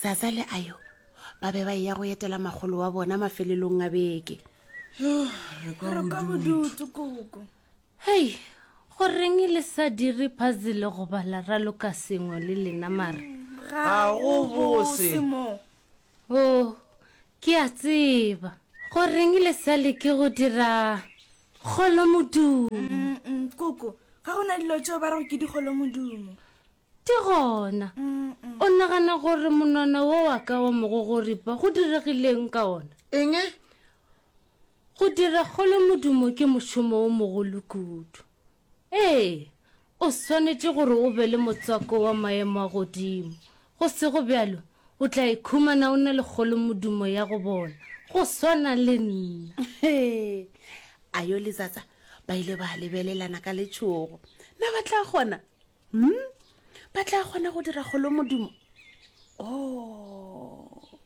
Zaza le Ayo ba be ba eya go etela magolo wa bona mafelelong a beke. Hei, go reng le sa dire puzzle go bala ra loka sengwe le lena mara? Ga go bose. Oh, ke a tseba. Go reng le sa leke go dira kgolo modumo? Koko, ga go na dilo tšeo ba rego ke dikgolo modumo. Ke gona. O nagana gore monwana wo wa ka wa mogogoripa go diregileng ka ona? Eng? Go dira kgolo modumo ke mošomo wo mogolo kudu. Ee, o swanetše gore o be le motswako wa maemo a godimo. Go sego bjalo, o tla ikhumana o na le kgolo modumo ya go bona, go swana le nna. Ayo le Zaza ba ile ba lebelelana ka letšhogo. Na ba tla kgona? hmm? ba tla kgona go dira golo modimo o oh.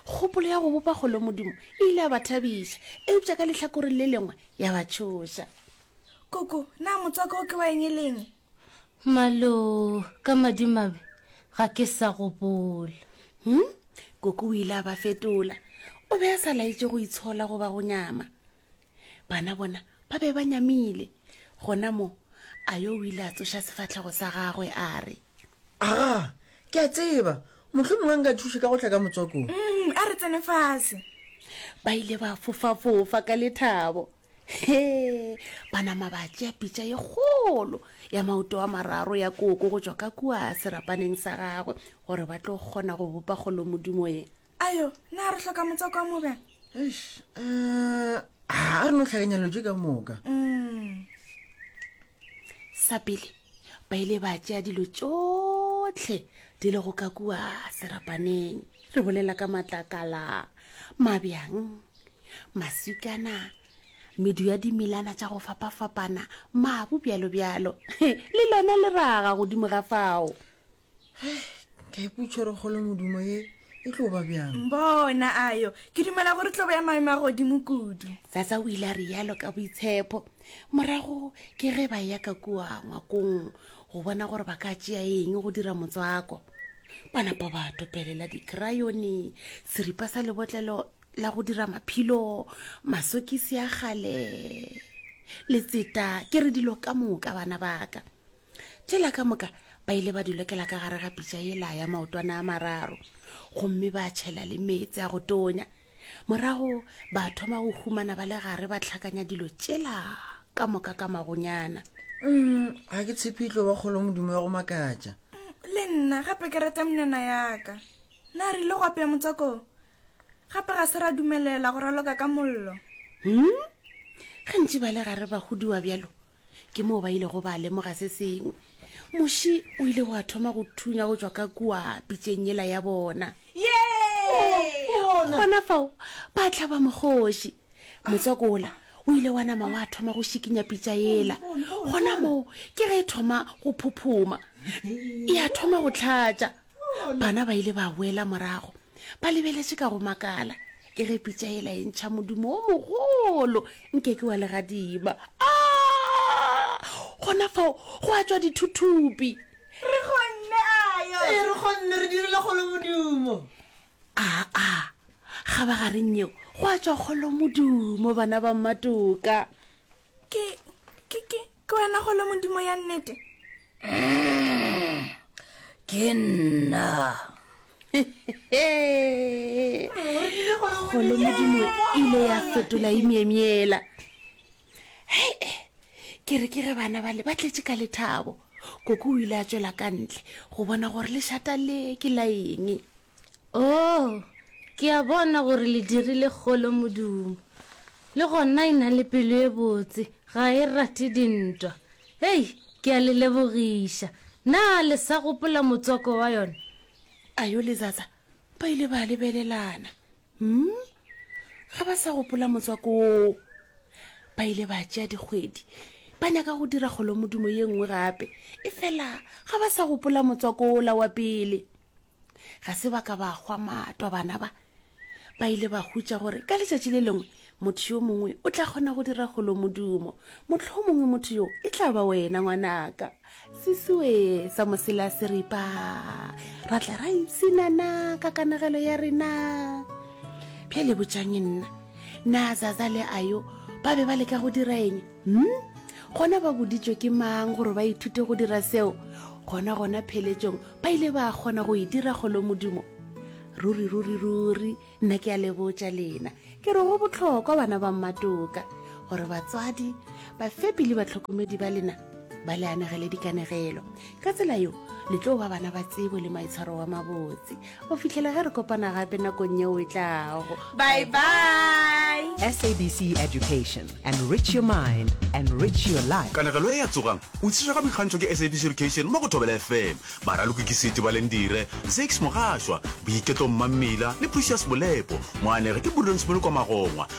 kgopolo ya go bopa golo modimo e ile ya ba thabiša eupša ka letlhakoreng le lengwe ya ba tšhoša koko na motswako o ke wa eng e leng malo ka madimabe ga ke sa gopola hmm? koko o ile a ba fetola o be a sa laetse go itshola goba go nyama Bana bona ba be ba nyamile. Gona mo, Ayo o ile a tsoša sefahlego sa gagwe a re. Aga, ke a tseba. Mohlho mongwe nka thuše ka go tla ka motswakong. Mm, a re tsene fase. Ba ile ba fofafofa ka lethabo. He, ba nama ba tšea pitša ye kgolo ya maoto a mararo ya koko go tšwa ka kua serapaneng sa gagwe gore ba tlo kgona go bopa kgolomodimo ye. ayo na re hloka motswako wa moka um a re no tlhakanyalotse ka moka Mm. sa pele ba ile ba tšea dilo tšotlhe di lego ka kua serapaneng re bolela ka matlakala mabjang maswikana medu ya dimilana tša go fapafapana mabu bjalo bjalo le lona le raga godimo ga fao ka iputšha gore kgolo modumo ye e tlo ba bjang bona ayo ke dumela gore tlobo ya maemo a godimo kudu sasa o ile a re yalo ka boitshepho morago ke ge ba ya ka kua ngwakong go bona gore ba ka tšea eng go dira motswako ba napa ba topelela dikrayone seripa sa lebotlelo la go dira maphilo masokisi a gale letseta ke re dilo ka moka bana baka tšela ka moka ba ile ba dulekela ka gare ga pitša e la ya maotwana a mararo gomme ba tšhela le meetse a go tonya morago ba thoma go humana ba le gare ba tlhakanya dilo tšela ka moka ka magonyana mm, ga ke tshepitlo ba kgolo modimo ya go makatša le nna gape ke rata mnena yaka na re ile go apeya motswako gape ga se ra dumelela go raloka ka mollo hmm? gantši ba le gare ba godiwa bjalo ke moo ba ilego ba lemoga se sengwe moši o ile wa thoma go thunya go tšwa ka kua pitšeng yela ya bona gona fao ba tlhaba mogoši motswako ola o ile wa nama wa thoma go šikinya pitša ela gona moo ke ge e thoma go phuphuma e a thoma go tlhatša bana ba ile ba boela morago ba lebeletše ka go makala e re pitša e la e ntšha modimo o mogolo nke ke wa legadima a gona fao go a tswa dithuthupi re kgonne ayo ee re kgonne re dirile kgolo modimo aa ga ba gareng yeo go a tswa kgolo modimo bana ba mmatoka ke ke ke ke wena golo modimo ya nnete ke nna golo modimo ile ya fetola imyemyela hei eh, ke re ke re bana bale ba tletse ka lethabo koko o ile a tswela ka ntle go bona gore lešata le ke la eng Oo, ke a bona gore le dirile kgolo modumo. Le gona e na le pelo e botse, ga e rate dintwa. Hei, ke a le lebogiša. Na le sa gopola motswako wa yona? Ayo le Zaza ba ile ba lebelelana. Hmm? Ga ba sa gopola motswako woo. Ba ile ba tšea dikgwedi ba nyaka go dira kgolo modumo ye nngwe gape, efela ga ba sa gopola motswako wola wa pele. Ga se ba ka ba hwa matwa bana ba ba ile ba hutša gore ka letšatši le lengwe motho yo mongwe o tla kgona go dira golo modumo motlho mongwe motho yo e tla ba wena ngwanaka sesiwe sa mosela seripa ra tla ra ipsinana ka kanagelo ya rena bjale botšang nna na zaza le ayo ba be ba leka go dira eng Hm? Gona ba boditšwe ke mang gore ba ithute go dira seo? Gona gona pheletšong ba ile ba kgona go e dira kgolo modimo. Ruri ruri ruri nna ke a lebotša lena. Ke re go botlhokwa bana ba mmatoka gore batswadi, bafepi le batlhokomedi ba lena ba le anegele dikanegelo. ka tsela yo le tlo ba bana ba tsebo le maitshwaro wa mabotse go fitlhela ge re kopana gape nakong yeo e tlago bye bye sabc education and rich your mind and rich your life kanegelo e ya tsogang o tshišwa ka boikgantšho ke sabc education mo go thobela fm baraloki ke seti balendire zakes mogashwa boiketlo mmammila le precious bolepo moanege ke burdonsmolo kwa magongwa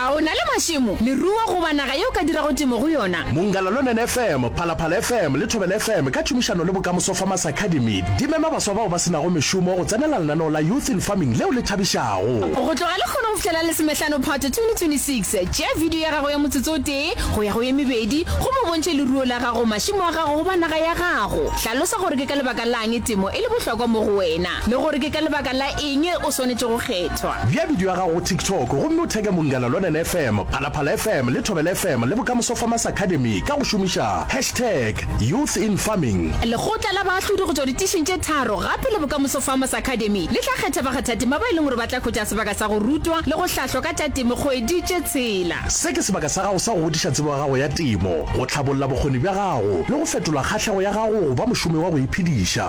A o na le mašemo, leruo goba naga ye o ka dirago temo go yona? Mongalalonen FM, Phalaphala FM le Thobela FM ka tšhomišano le Bokamoso Farmers Academy di mema baswa bao ba se nago mešomo go tsenela lenaneo la Youth in Farming leo le thabišago. Go tloga lehono go fihlela Lesomehlano Phato 2026, tšea bidio ya gago ya motsotso o tee go ya go ye mebedi gomme o bontšhe leruo la gago, mašemo a gago goba naga ya gago. Hlalosa gore ke ka lebaka la'ng temo e le bohlokwa mo go wena. le gore ke ka lebaka la eng o swanetše go kgethwa. Bea bidio ya gago go TikTok gomme o theke Mongana Lonene FM, Phalaphala FM le Thobela FM le Bokamoso Farmers Academy ka go šomiša hashtag YouthInFarming. Lekgotla la baahlodi go tšwa ditišing tše tharo gape le Bokamoso Farmers Academy le tla kgetha bakgathatema ba e leng gore ba tla hwetša sebaka sa go rutwa le go hlahlwa ka tša temo kgwedi tše tshela. Se ke sebaka sa gago sa go godiša tsebo ya gago ya temo, go hlabolla bokgoni bja gago le go fetola kgahlego ya gago go ba mošomi wa go iphediša.